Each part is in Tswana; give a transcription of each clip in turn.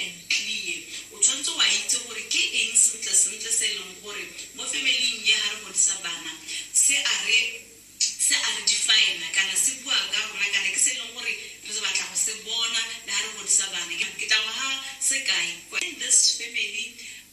Ntlie, o tshwanetse wa itse gore ke eng sentlesentle se e leng gore mo family-ing e ga re godisa bana se a re se a re define-a kana se bua ka rona kana ke se e leng gore re batla go se bona le ga re godisa bana. Ke tla go fa sekai, kwa in this family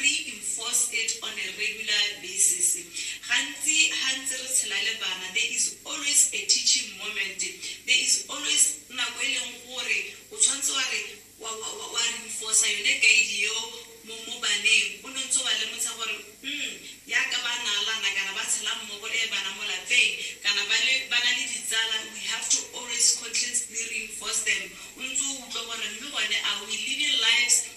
reinforce it on a regular basis. Gantsi ha ntse re tshela le bana there is always a teaching moment. There is always nako e leng gore o tshwanetse wa re wa wa wa wa reinforce yone guide eo mo mo baneng o ne ntse wa lemotsha gore mm yaka ba naalana kana ba tshela mmogo le bana mo lapeng kana ba le ba na le ditsala we have to always constantly reinforce them o ntse o utlwa gore mme bone are we living lives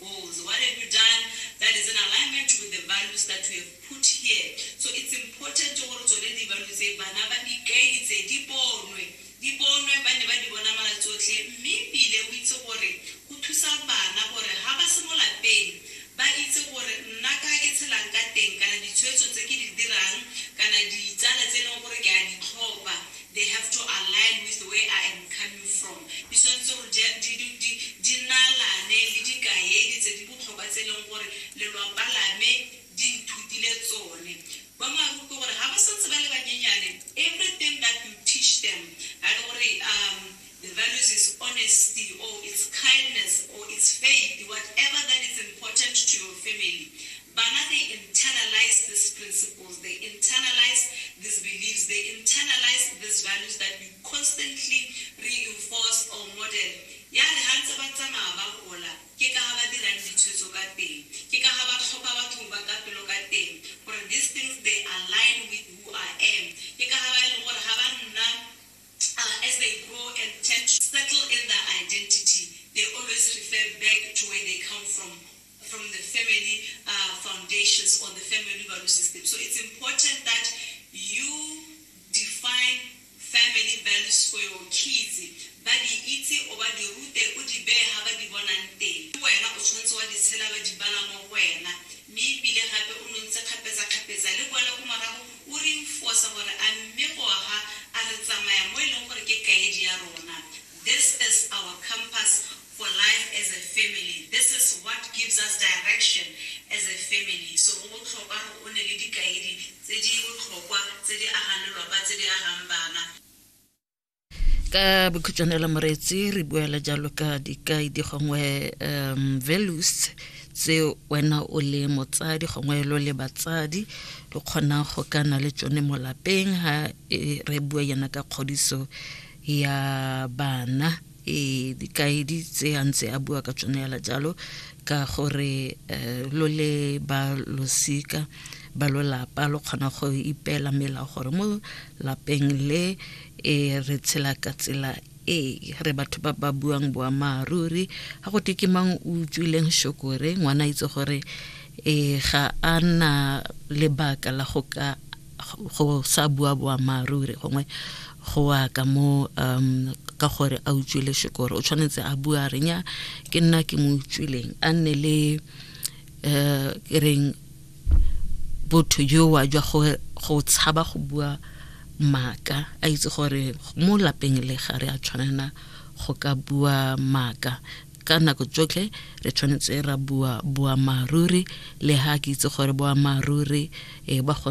goals, what have you done that is in alignment with the values that you have put here. So it's important gore tsone di-value tse bana ba di kaeditse, di bonwe, di bonwe ba nne ba di bona mala tsotlhe. Mme ebile o itse gore go thusa bana gore ha ba se mo lapeng ba itse gore nna ka ke tshelang ka teng kana ditshwetso tse ke di dirang kana ditsala tse e leng gore ke a di tlhopha They have to align with the way I am coming from. Di tshwanetse gore di, di, di, di, di nalane le dikaedi tse di botlhokwa tse e leng gore lelwapa la me di nthutile tsone. Boammaaruri ke gore ha ba santse ba le banyenyane, everything that you teach them, ha e le gore um The values is honesty or it's kindness or it's faith, whatever that is important to your family. But now they internalize these principles, they internalize these beliefs, they internalize these values that you constantly reinforce or model. ya re ga ntse ba tsamaya ba gola ke ka ga ba dirang ditshwetso ka teng ke ka ga ba tlhopha batho ba ka pelo ka teng gore these things they align with who i am ke ka ga ba e leng gore ga ba nna Uh, as they grow and tend to settle in their identity, they always refer back to where they come from, from the family uh, foundations or the family value system. So it's important that you define family values for your kids ba di itse o ba di rute o di beye ga ba di bonang teng wena o tshwanetse wa di tshela ba di bala mo go wena Mme e bile gape o nontse kgapetsakgapetsa le kwala ko morago o re infosa gore a mme Goga a re tsamaya mo e leng gore ke kaedi ya rona. This is our compass for life as a family. This is what gives us direction as a family. So go botlhokwa gore o nne le dikaedi tse di botlhokwa tse di agang lelwapa, tse di agang bana. ka bokhutshwane la moreetsi re buela jalo ka dikai di gongwe um values tse wena o le motsadi gongwe lo le batsadi lo kgonang go ka na le tsone mo lapeng ha e, re bua yana ka kgodiso ya bana e dikaedi tse a ntse a bua ka tsone yala jalo ka gore eh, lo le ba losika ba lolapa lo kgona go ipeela melao gore mo lapeng le e re tshela ka tsela e re batho ba ba buang boammaaruri ga go teke mang o utswileng shokore ngwana a itse gore e ga a na lebaka la go ka go sa bua boammaaruri gongwe go wa ka mo um ka gore a utswile shokore o tshwanetse a bua renya ke nna ke mo utswileng a nne le um e reng botho jowa jwa gore go tshaba go bua maaka a itse gore mo lapeng le ga re a tshwanela go ka bua maaka ka nako tsotlhe re tshwanetse ra bua boammaaruri le ga ke itse gore boammaaruri e ba go